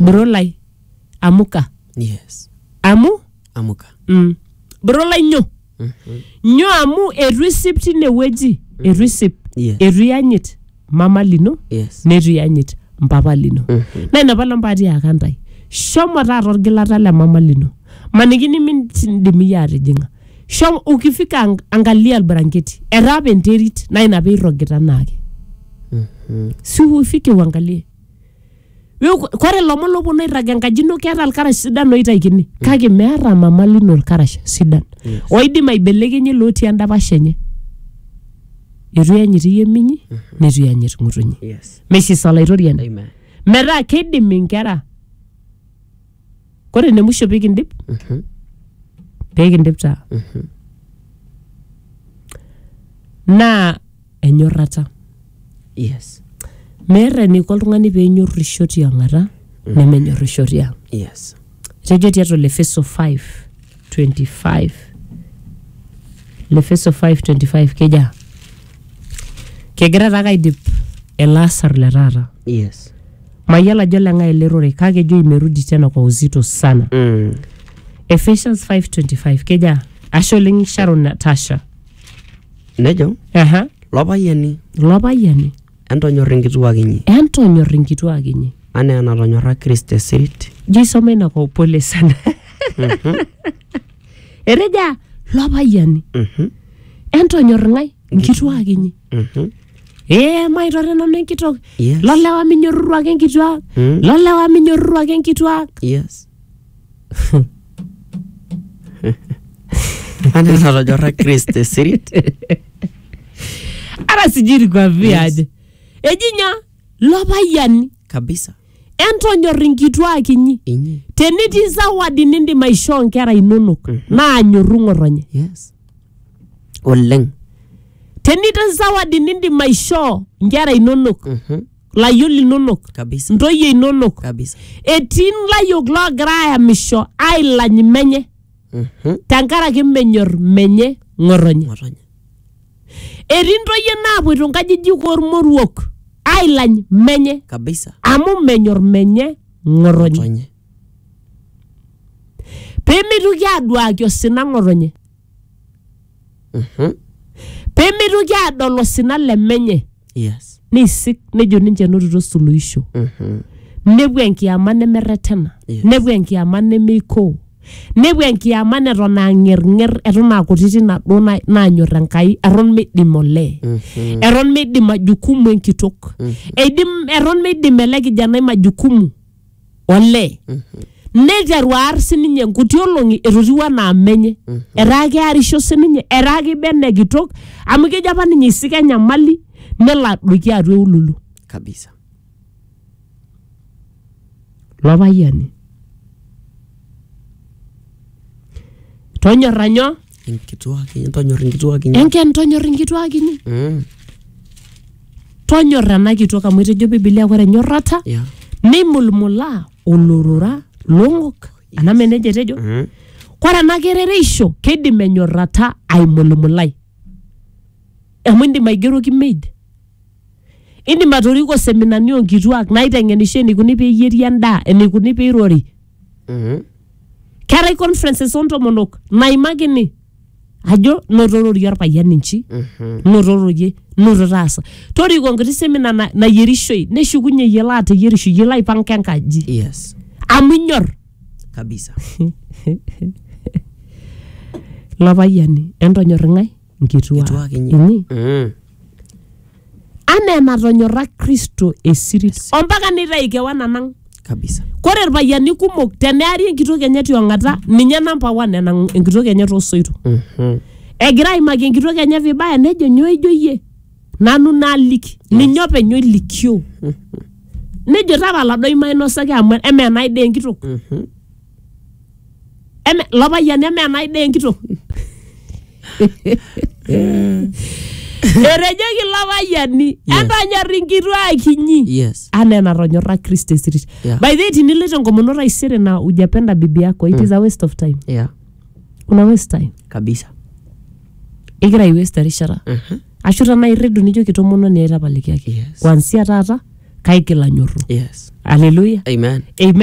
Bro lai, amuka. Yes. Amu? Amuka. Mm. Bro lai nyo. Nyo amu etu isip tinewueji. Etu isip. Yes. Etu iyanyit mama lino. Yes. Netu iyanyit mpapa lino. Na ina pala mpaatiaka ntae. Shomo taata orgilata le mama lino. Maniki nimindim iyie atijing'a. Shomo ukifika ang- angalia albaranketi. Etaa apa enterit na ina pee irrogita naake. Si ufike uangalie. Yo- kore lomon loponu airrag enkaji ino keata lkarash sidan oitaikini kake meata mama lino lkarash sidan oidim aibelekenye lotii endapash enye etu iyanyit iye minyi netu iyanyit ng'utunyi Yes. meisisa olaitoriani Amen. metaa keidim inkera kore ene musho pikindip Mhm. pikindip taa Mhm. naa enyorrata Yes. meeta eniko oltung'ani peenyorrisho tiang'ata nemenyorrisho tiang Yes. etejo tiatua le feso 5 25 lefeso 525 keja kegira taake aidip ele asar le taata yes mayiolo ajo leng'ae ele rorei kake ejo imerudi tena kwa uzito sana mm. Ephesians 5:25 keja ashe oleng Sharon Natasha nejo aha lopayiani lopayiani Entonyor inkituak inyi. Entonyor inkituak inyi. Anaa enatonyorra Kristo esirit. Ijo isoma ina kwa upole sana. Eteja lopayiani. Entonyor ng'ae? Inkituak inyi. Ee maitore nanu enkitok. Yes. Lolewa minyorruru ake inkituak. Lolewa minyorruru ake inkituak. Yes. Ana natonyorra Chris te sirit. Ara sijui nikwambie Yes. aje. Ejinya lopayiani Kabisa. entonyor inkituak inyi. Inyi. Tenetii zawadi nindim aishoo nkera inonok naa nyorru ng'otonye. Yes. Oleng. Tenetii zawadi nindim aishoo nkera inonok Mhm. layiok linonok kabisa ntoyie inonok kabisa etii layiok loogira ayamisho ailany menye Mhm. tenkaraki menyor menye ng'otonye ng'otonye etii ntoyie naapoito nkajijik ormoruok ailany menye kabisa amu menyor menye ng'otonye ng'otonye pemitoki aduaki osina ng'otonye Mhm. pemeitoki adol osina le menye Yes. neisik nejo ninche enotito suluhisho Mhm. nepuo enkiyama nemerretena Yes. nepuo enkiyama nemeikoo nepuo enkiyama neton aang'erng'er eton aakutiti naduo na- naanyor enkai eton meidim olee Mhm. eton meidim majukumu enkitok eidim eton meidim ele kijanai majukumu olee neiteru aar sininye nkuti olong'i etotiwuo anaa menye etaa kearisho sininye etaa keiba ene kitok amu kejo apa ninye isika enyamali nelo adoiki atua eululu kabisa lo payiani tonyorra nyoo Inkituak inyi, tonyor inkituak inyi. enken tonyor inkituak inyi Mm, tonyor ena kitok amu etejo bibilia ore enyorrata yeah. neimulmulaa olorora long'ok anaa mee nejia etejo Mm, kore ena kerereisho keidim enyorrata aimulmulai amu indim aigeroki maid indim atoriko seminani onkituak naiteng'enisho eneikuni peeyieri endaa eneikuni peirori keetae conferences ontomonok naimakini ajo notororie orpayian inchi notororie noto taasa toriko enkiti semina na- nayierishoi neshukunye yiolo ateyierisho yiolo aipanga enkaji yes amu inyor kabisa ilo payiani entonyor ing'ae nkituak Kituak inyi. inyi Mm. anaa enatonyorra kristo esirit ompaka neitayu kewan anang kabisa kore irpayiani kumok teneari enkitok enye tiong'ata ninye namba one enang enkitok enye toosoito Mhm. egira aimaki enkitok enye vibaya nejo nyoo ijo iyie nanu naaliki ninye openy oilikioo nejo tapala doi mainosaki amu emenai dee enkitok Mhm. Eme, lo payian eme enai daa enkitok etejoki ilo payiani Yes. entonyor inkituak inyi yes anaa enatonyorra kristo esirit Yeah. by the way tiniloito enkomono taisere na ujapenda bibi yako it is a waste of time yeah una waste time kabisa igira ai waste erishata Mhm. ashu tanaa irridu nijo kitomononi aitapalikiaki Yes. kwansia taata kaigil anyorru yes haleluya amen amen